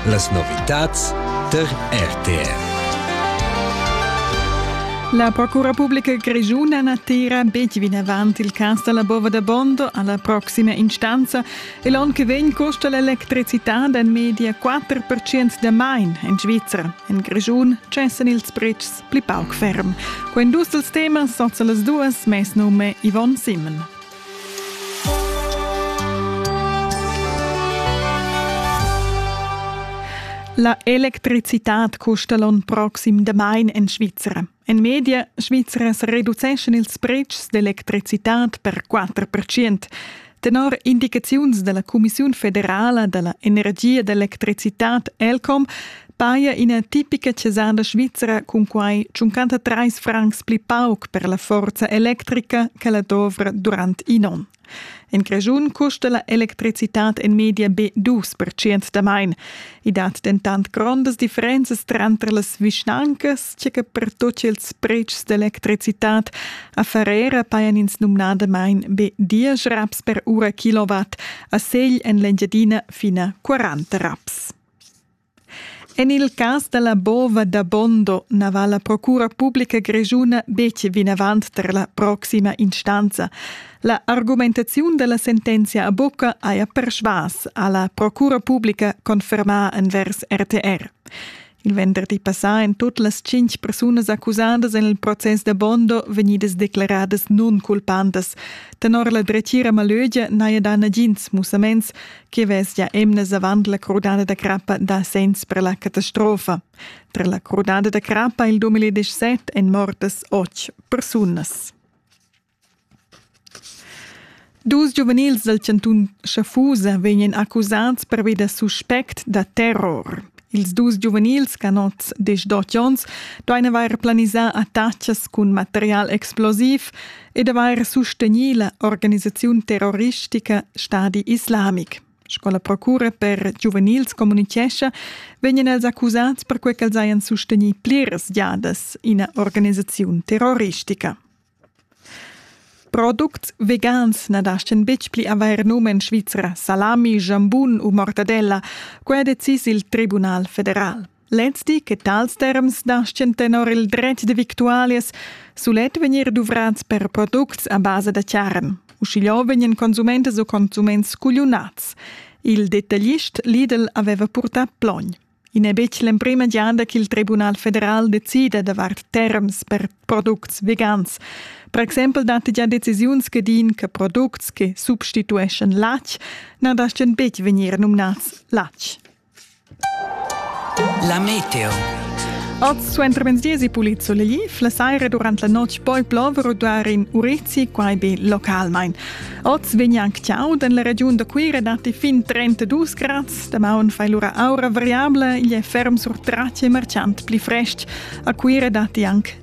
Las novitads tar RTR. La Procura Pubblica Grigiuna n'attira betg vinavant il cas da la bova da Bondo alla proxima instanza e l'onn che vegn custa l'electricitad en media 4% da main en Svizzera. En Grischun cessan ils pretschs pli pauc ferm. Quai dus dels temas sozza las duas mes nume Yvonne Simon. La electricitad custa l'on proxim damain en Svizra. En media Svizras reduceschan ils pretschs d'electricitad per 4%. Tenor indicaziuns della Commissiun federala della energia d'electricitad ELCOM paia ina tipica cesarda svizra cun quai 53 francs pli pauc per la forza electrica che la dovra durant in onn. En Grischun custa la electricitad en media be 2% da main. I dat dentant grondas differenzas tranter las vischnancas, tge che per tutti ils pretschs d'electricitad a Ferrera pajan ins numnadamain be 10 raps per ura kilowatt, a Segl en l'Engiadina fina 40 raps. En il cas da la bova da Bondo na va la procura publica grischuna betg vinavant tar la proxima instanza. La argumentaziun da la sentenzia a bucca haja persvas, ha la procura publica confermà envers RTR. Il venderdi passà èn tut las tschintg persunas accusadas en il process da Bondo vegnidas declaradas nunculpantas. Tenor la dretgira Malögia n'haja dà nagins mussaments che vesia emnas avant la crudada da crappa da segns per la catastrofa. Per la crudada da crappa il 2017 èn mortas otg persunas. Dus giuvenils dal chantun Schaffusa vegnan accusads pervi da suspect da terror. Ils dus giuvenils, canots de 18 onns, doan avair planisà attachas cun material explosiv e d'avair sustegnì la organisaziun terroristica Stadi Islamic. Sco la procura per giuvenils communitgescha, vegnan els accusads perquai ch'els hajan sustegnì pliras giadas ina organisaziun terroristica. Products vegans na dastgan betg pli avair num en Svizra salami, jambun u mortadella. Quai ha decis il Tribunal federal. Lez di che tals terms naschian tenor il dretg da victualias sulet vegnir duvrads per products a basa da charn. Uschigliò vegnan consumentas u consuments cugliunads. Il detaglist Lidl aveva purtà plogn. I n'è betg l'emprima giada ch'il Tribunal federal decida davart terms per products vegans. Per exempel datti gia decisiuns che din che products che substitueschan latg na dastgan betg vegnir numnads latg. La meteo. Oz suentervenerdì si pulizolegli, la saira durant la notg poi plover u dar in urezi, quai be localmain. Oz vegn anc chau en la regiun da Cuira datti fin 32 grad. Damaun fai lura aura variabla, igl è ferm sur tratg e marciant pli frestg. A Cuira datti anc